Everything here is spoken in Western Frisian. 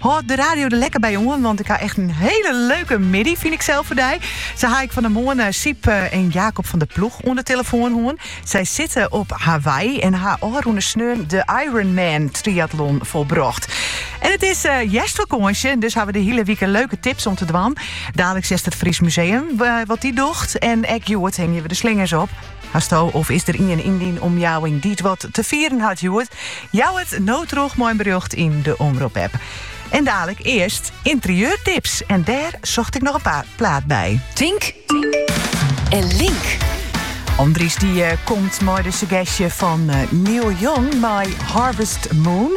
Hâld de radio der lekker by oan, want ik ha echt in hele leuke middei, fyn ik sels foar dy. Sa ha ik fan 'e moarn Syb en Jacob van der Ploeg oan 'e tillefoan hân. Sy sitte op Hawaï en ha ôfrûne sneon de Ironman Triathlon folbrocht. En it is hjerstfakânsje, dus ha we de hiele wike leuke tips om te dwaan. Daliks hearst it Fries Museum wat dy dogge en ek hjoed hingje we de slingers op. Hasto of is der ien yn dyn omjouwing dy't wat te fieren hat hjoed? Jou it no troch mei in berjocht yn de Omrop app. En daliks earst interieurtips en dêr socht ik noch in paar plaat by. Tink en link. Andries die komt mei de sugestje fan Neil Young mei Harvest Moon.